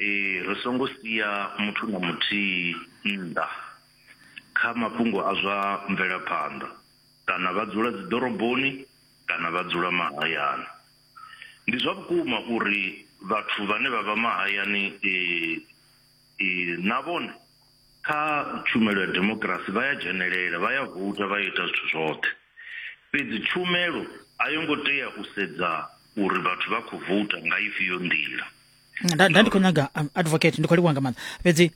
Ee, ri songo sia muthu na muthihi nnḓa kha mafhungo a zwa mvelaphanḓa, kana vha dzula dziḓoroboni kana vha dzula mahayani. Ndi zwa vhukuma uri vhathu vhane vha vha mahayani na vhone kha tshumelo ya demokirasi vha ya dzhenelela vha ya voutha vha ita zwithu zwoṱhe, fhedzi tshumelo a yo ngo tea u sedza uri vhathu vha khou voutha nga ifhio nḓila. nda nda ndi khou nyaga um, advocate ndi khou livhuwa nga maanḓa fhedzi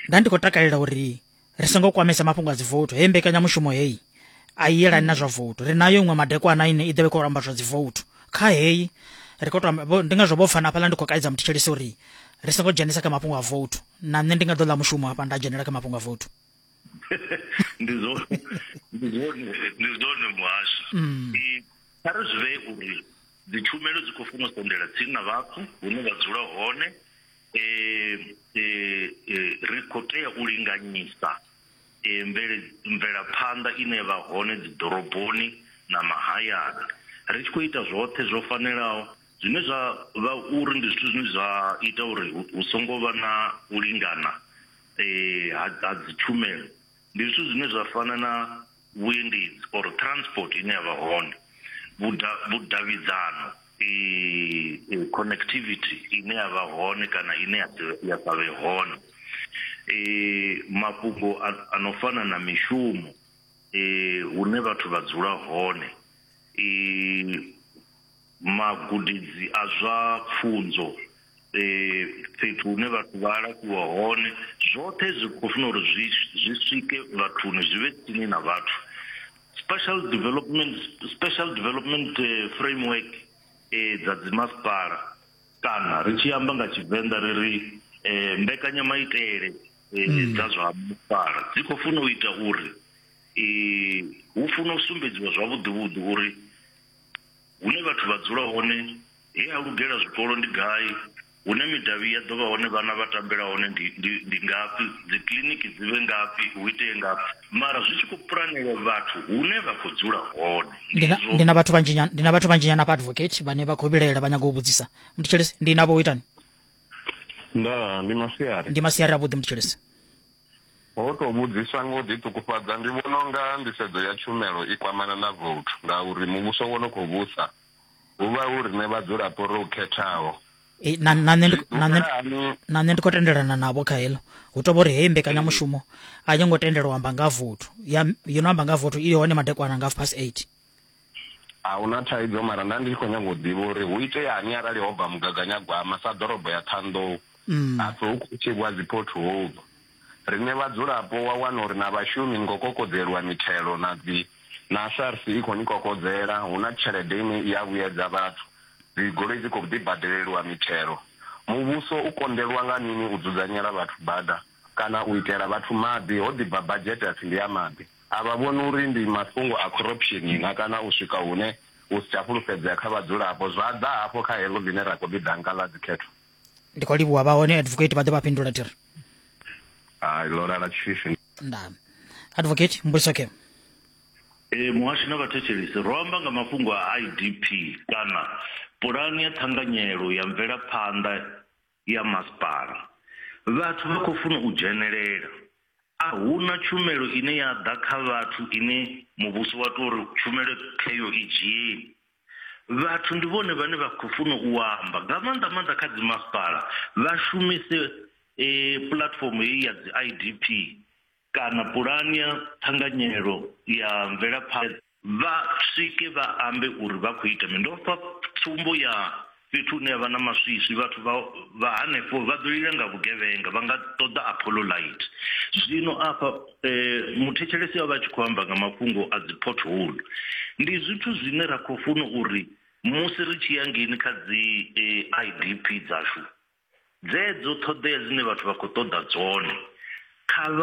nda ndi khou takalela uri ri songo kwamesa mafhungo a dzivouthu hei mbekanyamushumo heyi a i yelani na zwa vouthu ri nayo iṅwe madekwana ine i ḓovhe khou amba zwa dzivouthu kha heyi ri khou to amba- vho- ndi ngazwo vho pfana hafhaḽa ndi khou kaidza muthetshelisi uri ri songo dzhenisa kha mafhungo a vouthu na nṋe ndi nga ḓo ḽa mushumo hafha nda dzhenela kha mafhungo a vouthu ndi zwone ndi zwone ndi zwone muhasho I- kha ri zwi vhee uri Dzitshumelo dzi khou funa u sendela tsini na vhathu hune vha dzula hone. E, e, e, ri khou tea u linganyisa e, mvele, mvelaphanḓa ine ya vha hone dziḓoroboni na mahayani ri tshi khou ita zwoṱhe zwo fanelaho zwine zwa vha uri ndi zwithu zwine zwa ita uri hu, hu songo vha na u lingana e, ha, ha dzitshumelo ndi zwithu zwine zwa fana na vhuendedzi or transport ine yavha hone vhuda vhudavhidzano eh connectivity ine ya vha hone kana ine ya ya sa vhe hone eh mafhungo a no fana na mishumo eh hune vhathu vha dzula hone eh magudedzi a zwa pfunzo fhethu hune vhathu vha alafhiwa hone zwoṱhe zwi khou funa uri zwi zwi swike vhathuni zwi vhe tsini na vhathu special development special development eh, framework eh, dza dzimasipala kana ri tshi amba nga tshivenḓa ri ri eh, mbekanyamaitele eh, mm. dza zwa masipala dzi khou funa u ita uri eh, hu funa u sumbedziwa zwavhuḓivhuḓi uri Hune vhathu vha dzula hone, he ha lugela zwikolo ndi gai? Hune midavhi ya ḓo vha hone vhana vha tambela hone ndi, ndi, ndi ngafhi? Dzikiḽiniki dzi vhe ngafhi? Hu itee ngafhi? Mara zwi tshi khou pulanelwa vhathu hune vha khou dzula hone. Ndi na, ndi na vhathu vhanzhinyana, ndi na vhathu vhanzhinyana hafha advocate vhane vha khou vhilaela vha nyaga u vhudzisa. Muthetshelesi, ndi navho u itani? Ndaa, ndi masiari. Ndi masiari avhuḓi muthetshelesi. Ho tou vhudziswa nga u ḓiṱukufhadza, ndi vhona u nga nḓisedzo ya tshumelo i kwamana na vouthu ngauri muvhuso wo no khou vhusa hu vha hu riṋe vhadzulapo ro u khethaho. Ee, na na nṋe ndi na nṋe Ḓifhela hani na nṋe ndi khou tendelana navho kha heḽo hu tou vha uri heyi mbekanyamushumo a yo ngo tendelwa u amba nga ha vothu ya yo no amba nga ha vothu i hone madekwana nga half past eight A hu na thaidzo, mara nda ndi tshi khou nyanga u ḓivha uri hu iteani arali ho bva mugaganyagwama sa ḓorobo ya Ṱhanḓou mm. hapfi hu khou thivhwa dzi pothole. Riṋe vhadzulapo wa wana uri na vhashumi ni khou kokodzeliwa mithelo na dzi na SARS i khou ni kokodzela, hu na tshelede ine i a vhuyedza vhathu, dzi goloi dzi khou ḓi badeleliwa mithelo. Muvhuso u konḓelwa nga mini u dzudzanyela vhathu bada kana u itela vhathu maḓi ho ḓi bva badzhete hapfi ndi ya maḓi. A vha vhoni uri ndi mafhungo a khorupshini na kana u swika hune u si tsha fhulufhedzea kha vhadzulapo zwa ḓa hafho kha heḽo ḽine ra khou ḽi ḓa nga ḽa dzikhetho. Ndi khou livhuwa vha hone advocate vha ḓe vha fhindula thiri. Hai ḽo lala tshifhifi. Nda. Advocate mbudziso khe. Ee muhashi na vhathetshelesi, ro amba nga mafhungo a IDP kana Pulani ya Ṱhanganyelo ya Mvelaphanḓa ya masipala. Vhathu vha khou funa u dzhenelela. A hu na tshumelo ine ya ḓa kha vhathu ine muvhuso wa tou ri tshumelo kheyo i dzhieni. Vhathu ndi vhone vhane vha khou funa u amba nga maanḓa maanḓa kha dzi masipala vha shumise puḽatifomo heyi ya dzi I_D_P kana pulani ya ṱhanganyelo ya mvelaphanḓa. Vha swike vha ambe uri vha khou ita mini. Ndo fha tsumbo ya fhethu hune ha vha na maswiswi. Vhathu vha vha hanefho vha ḓo lila nga vhugevhenga, vha nga ṱoḓa Apollo Light. Zwino afha muthetshelesi o vha a tshi khou amba nga mafhungo a dzi pothole. Ndi zwithu zwine ra khou funa uri musi ri tshi ya ngeini kha dzi IDP dzashu, dzedzo ṱhoḓea dzine vhathu vha khou ṱoḓa dzone kha vha.